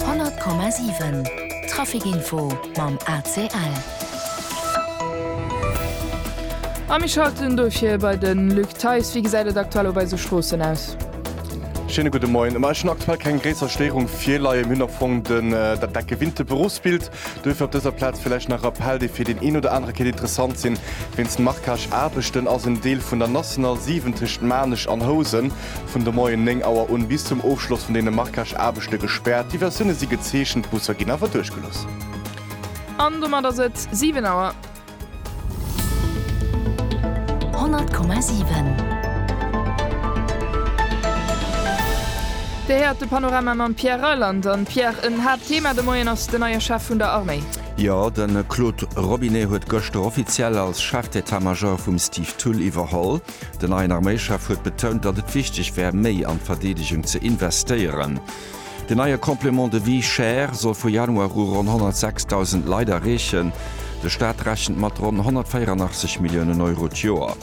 100,7 Trafic Info mam ACL. A mir schalten dofir bei de Luc Theis. Wéi gesäit et aktuell op eise Stroossen aus? Schéine gudde Moien. Ma ech hunn aktuell keng gréisser Stéierung virleien. Mir hunn am Fong dat decke Winterberufsbild. Duerfir op dëser Plaz villäicht nach Rappell, déi fir deen een oder anere kéint interessant sinn, Wéinst Marquage-Aarbechten ass en Deel vun der National 7 tëscht Maarnech an Housen vun de Moien 9 Auer un bis zum Ofschloss vun deene Marquage-Aarbechte gespäert. Diversioune si gezeechent, d'Busser ginn awer duerchgelooss. An domat ass et 7 Auer. 100,7. Dir héiert de Panorama mam Pierre Reyland. An Pierre, en Haaptthema de Moien ass den neie Chef vun der Arméi. Jo, de Claude Robinet huet gëschter offiziell als Chef d'État-Major vum Steve Thull iwwerholl. Den neien Arméichef huet betount, datt et wichteg wär, méi an d'Verdeedegung ze investéieren. Den neie Complément de vie cher soll vu Januar u ronn 106.000 Leit erreechen. De Staat rechent mat ronn 184 Milliounen Euro d'Joer.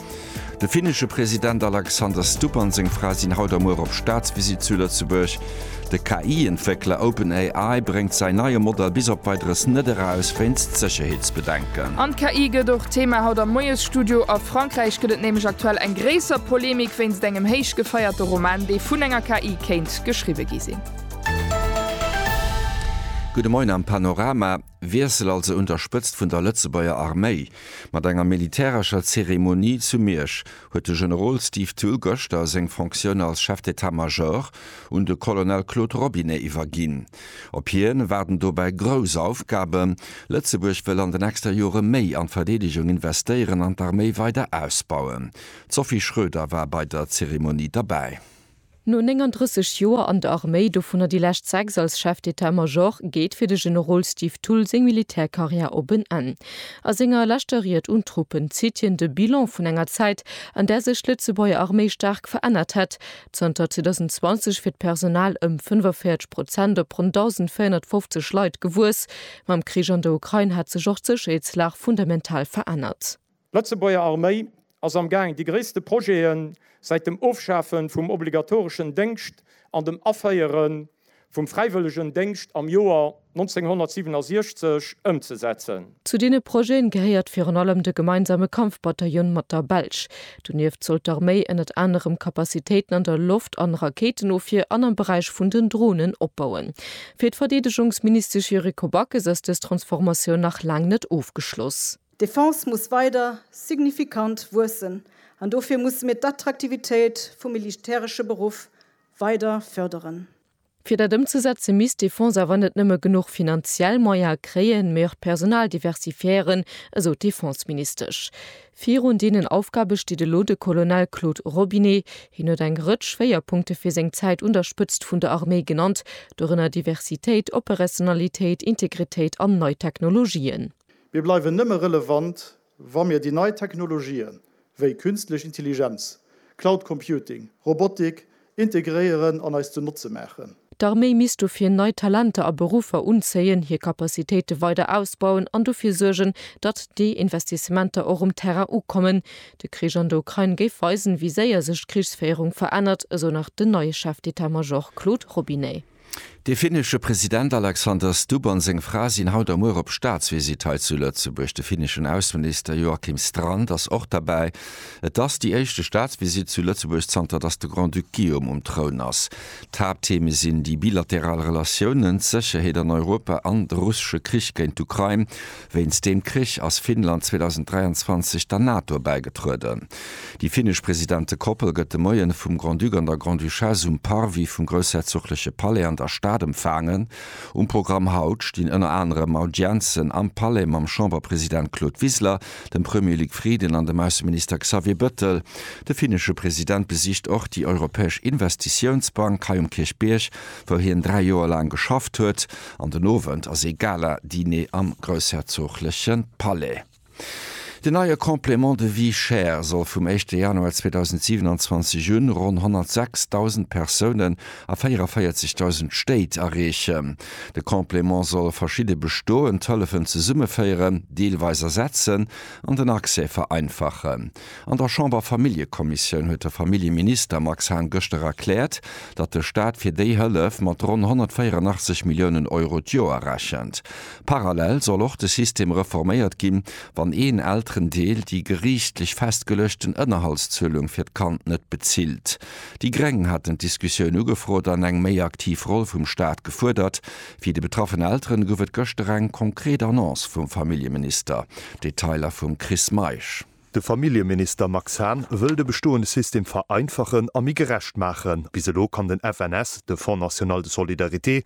De finnesche President Alexander Stubb an seng Fra sinn haut a muer op Staatsvisitt zu Lëtzebuerg. De KI-Entwéckler OpenAI bréngt säin neie Modell bis op Weideres net eraus, wéinst Sécherheetsbedenken. An d'KI gëtt och Thema haut am Moiesstudio. A Frankräich gëtt et nämlech aktuell eng gréisser Polemik wéinst engem héich gefeierte Roman, dee vun enger KI kéint geschriwwe gi sinn. Gudde Moien am Panorama, Wiessel also un der Spëtzt vun der Lëtzebuerger Arméi. Mat enger militärescher Zeremonie zu Miersch huet de Generol Steve Thull gëschter seng Fonctioun als Chef d'État-Major un de Colonel Claude Robinet iwwerginn. Op hien waarden dobäi grouss Aufgaben, Lëtzebuerg wëll an de nächster Jore méi an d'Verdeedegung investéieren an d'Arméi weider ausbauen. D'Sophie Schroeder war bei der Zeremonie derbäi. No 39 Joer an der Arméi, dovunner déi lescht sechs als Chef d'État-Major, geet fir de Generol Steve Thull seng Militärkarriär op en Enn. A senger leschter Ried un d'Truppen zitt hien de Bilan vun enger Zäit, an där sech d'Lëtzebuerger Arméi staark verännert hätt, Zanter 2020 wier d'Personal ëm 45 Prozent op ronn 1.450 Leit gewuess. Mam Krich an der Ukrain hätt sech och d'Sécherheetslag fundamental verännert. D'Lëtzebuerger Arméi ass am Gaang déi gréisste Projete säit dem Ofschafe vum obligatoreschen Déngscht an dem Aféiere vum fräiwëllegen Déngscht am Joer 1967 ëmzesetzen. Zu deene Projete gehéiert virun allem de gemeinsame Kampfbataillon mat der Belsch. Donieft soll d'Arméi ënnert anerem Kapazitéiten an der Loft an Rakéitenofwier an am Beräich vun den Dronen opbauen. Fir d'Verdeedegungsministesch Yuriko Backes ass dës Transformatioun nach laang net ofgeschloss. D'Defense muss weider signifikant wuessen an dofir musse mir d'Attraktivitéit vum militäresche Beruff weider fërderen. Fir dat ëmzesetze misst d'Defense awer net nëmme genuch finanziell Moyene kréien, mee och d'Personal diversifiéieren, esou d'Defenseministesch. Virun deenen Aufgabe steet elo de Colonel Claude Robinet. Hien huet eng Rëtsch Schwéierpunkte fir seng Zäit un der Spëtzt vun der Arméi genannt, dorënner Diversitéit, Operationnalitéit, Integritéit an nei Technologien. Mir bleiwen nëmme relevant, wa mir déi nei Technologië wéi Künstlech Intelligenz, Cloud Computing, Robotik integréieren an eis zu Notze maachen. D'Arméi misst dofir nei Talenter a Beruffer unzéien, hir Capacitéite weider ausbauen an dofir suergen, datt déi Investissementer och um Terrain ukommen. De Krich an der Ukrain géif weisen, wéi séier sech d'Krichsféierung verännert, esou nach den neie Chef d'État-Major Claude Robinet. De finnesche President Alexander Stubb an seng Fra sinn haut a muer op Staatsvisitt hei zu Lëtzebuerg. De finneschen Ausseminister Joakim Strand ass och derbäi. Et ass déi éischte Staatsvisitt zu Lëtzebuerg zanter datt de Grand-Duc Guillaume um Troun ass. D'Haapttheme sinn déi bilateral Relatiounen, d'Sécherheet an Europa an de russesche Krich géint d'Ukrain. Wéinst deem Krich ass Finnland 2023 der NATO bäigetrueden. Déi finnesch Presidentekoppel gëtt de Moien vum Grand-Duc an der Grande-Duchesse um Parvis vum groussherzogleche Palais an der Stad empfaangen. Um Programm haut stinn ënner anerem Audienzen am Palais mam Chamberpresident Claude Wiseler, dem Premier Luc Frieden an dem Ausseminister Xavier Bëttel. De finnesche President besicht och déi Europäesch Investitiounsbank hei um Kierchbierg, wou hien dräi Joer laang geschafft huet. An den Owend ass ee Gala-Diner am groussherzogleche Palais. Deen neie Complément de vie chère soll vum éischte Januar 2027 un ronn 106.000 Persounen a 44.000 Stéit erreechen. De Complément soll verschidde bestoend Hëllefen zesummeféieren, deelweis ersetzen an den Accès vereinfachen. An der Chamberfamilljekommissioun huet de Familljeminister Max Hahn gëschter erkläert, datt de Staat fir déi Hëllef mat ronn 184 Milliounen Euro d'Joer rechent. Parallel soll och de System reforméiert ginn, wann een Elterendeel déi geriichtlech festgeluechten Ënnerhaltszuelung fir d'Kand net bezilt. Déi Gréng haten d'Diskussioun ugefrot an eng méi aktiv Roll vum Staat gefuerdert. Fir déi betraffen Elteren gouf et gëschter eng konkret Annonce vum Familljeminister. Detailer vum Chris Meisch. De Familljeminister Max Hahn wëll de bestoende System vereinfachen a méi gerecht maachen. Bis elo kann den FNS, de Fonds national de solidarité,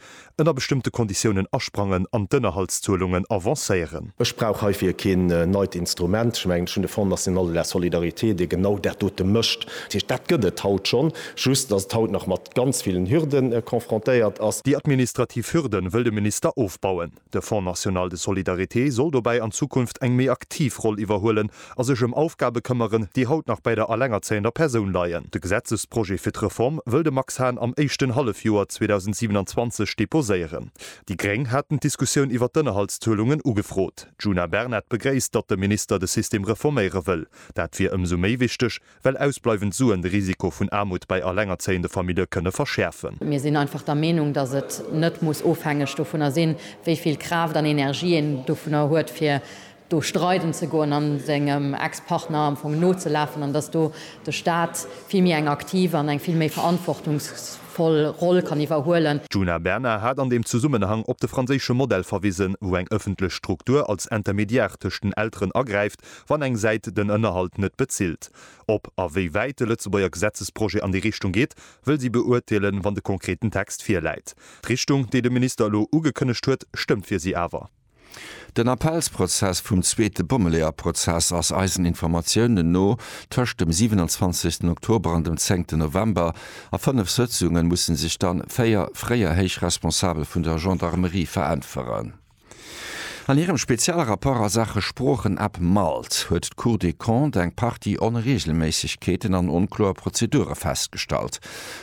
ënner bestëmmte Konditiounen asprangen an d'Ënnerhaltszuelungen avancéieren. Ech brauch heifir keen neit Instrument. Ech mengen, ech hunn de Fonds national de la solidarité, dee genau dat dote mécht. Dat heescht, dat gëtt et haut schonn, just ass et haut nach mat Ganz villen Hürden confrontéiert ass. Déi administrativ Hürden wëll de Minister ofbauen. De Fonds national de solidarité soll dobäi an Zukunft eng méi aktiv Roll iwwerhuelen a sech ëm Aufgabe këmmeren, déi haut nach bäi der allengerzéiender Persoun leien. De Gesetzesprojet fir d'Reform wëll de Max Hahn am éischten Hallefjoer 2027 deposéieren. Déi Gréng haten d'Diskussioun iwwert d'Ënnerhaltszuelungen ugefrot. D'Djuna Bernard begréisst, datt de Minister de System reforméiere wëll. Dat wier ëmsou méi wichteg, Well ausbleiwend Suen de Risiko vun Aarmut bei allengerzéiende Famillje kënne verschäerfen. Mir sinn einfach der Meenung, dass et net muss ofhängeg dovunner sinn, wéi vill Kraaft an Energie een dovunner huet, fir do streiden ze goen an sengem Ex-Partner am Fong nozelafen, an dass do de Stat vill méi eng aktiv an eng vill méi verantwortungsvoll Roll kann iwwerhuelen. D'Djuna Bernard hat an deem Zesummenhang op de franséische Modell verwisen, wou eng ëffentlech Struktur als Intermédiaire tëscht den Elteren agräift, wann eng Säit den Ënnerhalt net bezilt. Ob a wéi wäit de Lëtzebuerger Gesetzesprojet an déi Richtung geet, wëll si beurteelen, wann de konkreten Text virläit. D'Richtung, déi de Minister elo ugekënnegt huet, stëmmt fir si awer. Den Appellsprozess vum zweete Bommeleeër-Prozess ass eisen Informatiounen no tëscht dem 27 Oktober an dem 10 November. A fënnef Sëtzunge musse sech dann véier fréier héich Responsabel vun der Gendarmerie veräntweren. An hirem Spezialrapport a Saache Sproochen ab Malt huet d'Cour des Comptes eng Partie Onreegelméissegkeeten an onkloer Prozedure festgestallt.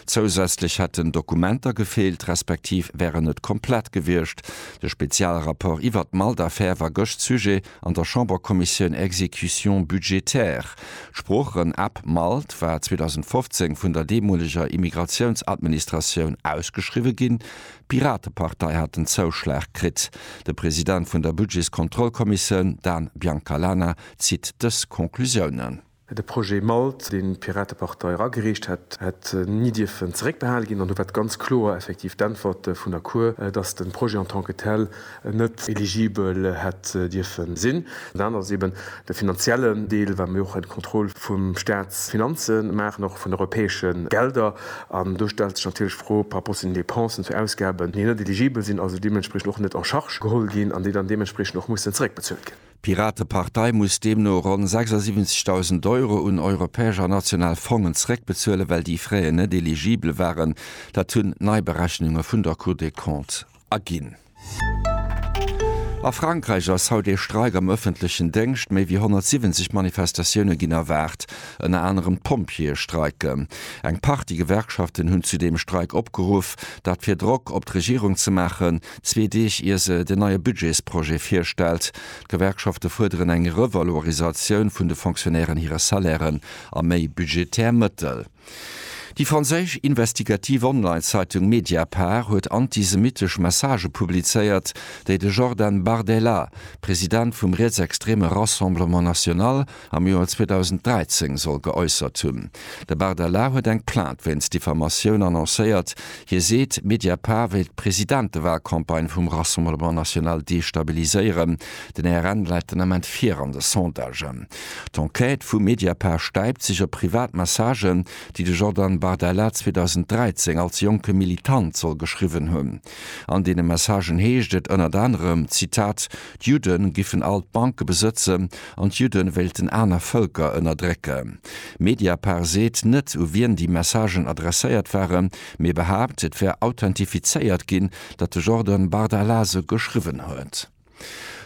Zousätzlech hätten Dokumenter gefeelt, respektiv wären net komplett gewiescht. De Spezialrapport iwwert d'Malt-Affär war gëscht Sujet an der Chambercommissioun Exécution budgétaire. D'Sproochen ab Malt war 2015 vun der deemoleger Immigratiounsadministratioun ausgeschriwwe ginn, D'Piratepartei hat den Zouschlag kritt. De President vun der Budgetskontrollkommissioun Dan Biancalana zitt dës Conclusiounen. De Projet Malt, deen d'Piratepartei eragereecht hat, hätt ni dierfen zeréckbehale ginn. An do war ganz kloer effektiv d'Äntwert vun der Cour, datt de Projet en tant que tel net eligibel hätt dierfe sinn. Dat anert ass eeben de finanziellen Deel, well mir och eng Kontroll vu Staatsfinanze maachen, och vun europäesche Gelder. An do stellt sech natierlech d'Fro par rapport zu den Dépensen, zu Ausgaben, déi net eligibel sinn, also deementspriechend och net en charge geholl ginn an déi dann deementspriechend och mussen zeréckbezuelt ginn. D'Piratepartei muss deemno ronn 76.000 Euro un europäesch a national Fongen zeréckbezuelen, well déi fréier net eligibel waren. Dat hunn nei Berechnunge vun der Cour des Comptes Aginn. A Frankräich ass haut ee Streik am ëffentlechen Déngscht. Méi wéi 170 Manifestatioune ginn erwaart. Ënner anerem d'Pompjeeë streiken. Eng Partie Gewerkschaften hunn zu deem Streik opgeruff, dat fir Drock op d'Regierung ze maachen, zwee Deeg ier se den neie Budgetsprojet virstellt. D'Gewerkschafte fuerderen eng Revalorisatioun vun de Fonctionnairen hire Salairen a méi budgetär Mëttel. Déi franséisch investigativ Online-Zeitung Mediapart huet antisemittesch Messagë publizéiert, déi de Jordan Bardella, President vum rietsextreme Rassemblement National, am Joer 2013 soll geäussert hunn. De Bardella huet eng Plainte wéinst Diffamatioun annoncéiert. Hie seet, Mediapart wéilt d'Presidentewahlcampagne vum Rassemblement National destabiliséieren. Den RN läit den Ament vir an de Sondagen. D'Enquête vu Mediapart stäipt sech op privat Messagen, déi de Jordan Bardella 2013 als jonke Militant soll geschriwwen hunn. An deene Messagen heescht et ënnert anerem, Zitat, D'Judde giffen all d'Banke besëtzen an d'Judde wéilten aner Vëlker ënnerdrécken. Mediapart seet net, u wien déi Messagen adresséiert waren, mee behaapt, et wär authentifizéiert ginn, datt de Jordan Bardella se geschriwwen huet.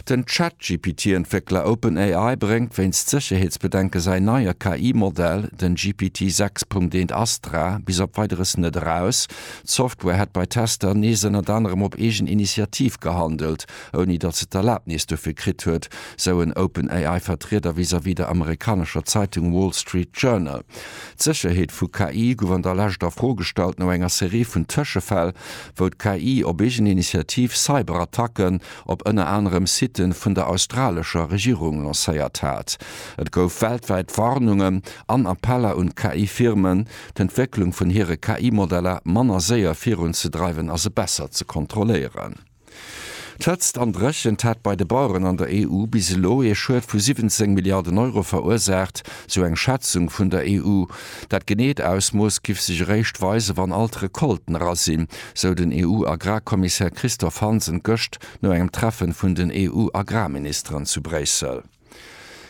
Den Chat-GPT-Entwéckler OpenAI bréngt wéinst Sécherheetsbedenke säin neie KI-Modell, den GPT-6.1 Astra, bis op Weideres net eraus. D'Software hätt bei Tester nees ënnert anerem op eegen Initiativ gehandelt, ouni datt se d'Erlabnis dofir kritt huet, sou en OpenAI-Vertrieder vis-à-vis der amerikanescher Zeitung Wall Street Journal. D'Sécherheet vu KI gouf an der Lescht a Fro gestallt no enger Serie vun Tëschefäll, wou d'KI op eegen Initiativ Cyberattacken op ënner anerem Site vun der australescher Regierung lancéiert hat. Et gouf weltwäit Warnungen an Appeller un d'KI-Firmen, d'Entwécklung vun hire KI-Modeller manner séier virunzedreiwen a se besser ze kontrolléieren. D'Hëtzt an d'Dréchent hätt bei de Baueren an der EU bis elo ee Schued vu 17 Milliarden Euro verursaacht, sou eng Schätzung vun der EU. Dat geneet Ausmooss giff sech eréischt weisen, wann all d'Recolten era sinn, sou den EU-Agrarkommissär Christophe Hansen gëscht no engem Treffen vun den EU-Agrarministeren zu Bréissel.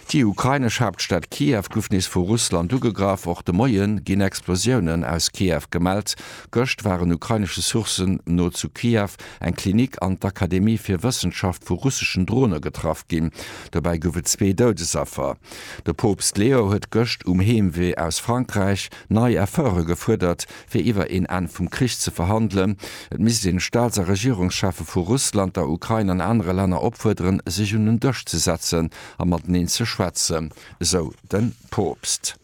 Déi ukrainesch Haaptstad Kiew gouf nees vu Russland ugegraff. Och de Moie ginn Explosiounen aus Kiew gemellt. Gëscht waren ukrainesche Sourcen no zu Kiew eng Klinik an d'Akademie fir Wëssenschaft vu russeschen Drone getraff ginn. Dobäi gouf et zwee Doudesaffer. De Poopst Leo huet gëscht um Heemwee aus Frankräich nei Efforte gefuerdert, fir iwwer een Enn vum Krich ze verhandelen. Et misst een d'Staats a Regierungscheffe vu Russland, der Ukrain an anere Länner opfuerderen, sech un en Dësch ze setzen a mateneen ze schwätzen, esou de Poopst.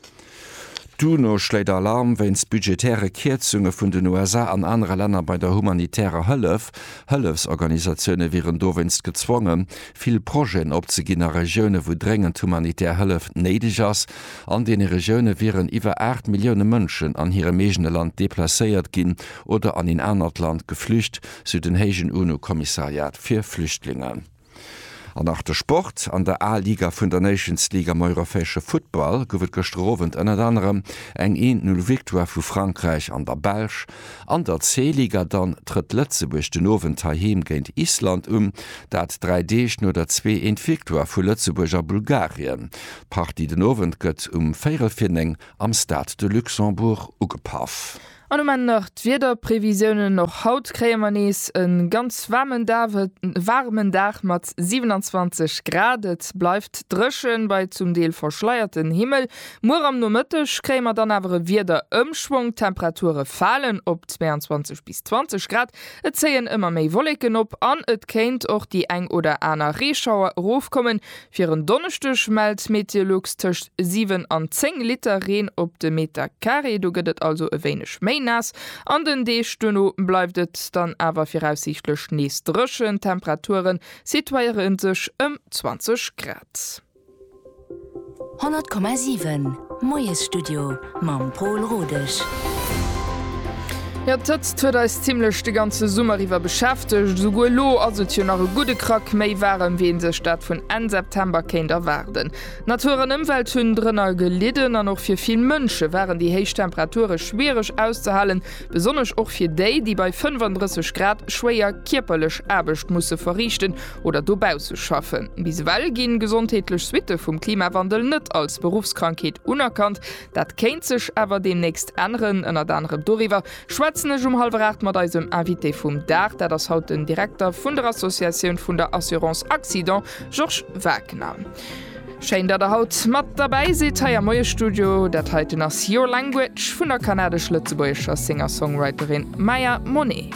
D'UNO schléit Alarm wéinst budgetäre Kierzunge vun den USA an anere Länner bei der humanitärer Hëllef. Hëllefsorganisatioune wieren dowéinst gezwongen, vill Projeten opzeginn a Regiounen, wou dréngend humanitär Hëllef néideg ass. An deene Regioune wieren iwwer 8 Millioune Mënschen an hirem eegene Land deplacéiert ginn oder an een anert Land geflücht, sou den héijen UNO-Kommissariat fir Flüchtlingen. An nach de Sport, An der A-Liga vun der Nations League am europäesche Futtball gouf et gëschter Owend ënnert anerem eng Een-Null-Victoire vu Frankräich an der Belsch. An der C-Liga dann trëtt Lëtzebuerg den Owend heiheem géint Island un, dat dräi Deeg no der zwee eent Victoire vu Lëtzebuerg a Bulgarien. D'Partie den Owend gëtt um véirel fir néng am Stade de Luxembourg ugepaff. An um Enn nach d'Wiederprevisiounen, Och haut kréie mer nees e ganz waarmen Dag mat 27 Grad. Et bleift dréchen bei zum Deel verschleierten Himmel, Muer am Nomëtteg kréie mer dann awer e Wiederëmschwong, d'Temperature falen op 22 bis 20 Grad, et zéien ëmmer méi Wolleken op an et kéint och déi eng oder aner Reeschauer erofkommen. Fir en Donneschdeg mellt Meteolux tëscht 7 an 10 Liter Reen op de Meter Carré, do gëtt et also e wéineg méi naass. An den Deeg duerno bleift et dann awer viraussiichtlech nees dréchen, d'Temperature situéiere sech ëm 20 Grad. 100,7 Moiesstudio mam Pol Rodesch. Jo, d'Hëtzt huet eis zimmlech de ganze Summer iwwer beschäftegt. Esouguer elo ass et jo nach e gudde Krack méi waarem, wéi ee sech dat vun Enn September kéint erwaarden. Natur an Ëmwelt hunn drënner gelidden an och fir vill Mënsche waren déi héich Temperature schwiereg auszehalen, besonnesch och fir déi, déi bei 35 Grad schwéier kierperlech Aarbecht musse verriichten oder dobausse schaffen. Bis ewell ginn gesondheetlech Suitte vum Klimawandel net als Beruffskrankheet unerkannt. Dat kéint sech awer deemnächst änneren. Ënnert anerem doriwwer schwätzen ech um hallwer 8 mat eisem Invité vum Dag. Dat ass haut den Direkter vun der Associatioun vun der Assurance Accident, Georges Wagner. Schéin, datt Der haut mat derbäi sidd hei am Moie-Studio. Dat heiten ass Your Language vun der kanadesch-lëtzebuergescher Singer-Songwriterin Maya Monet.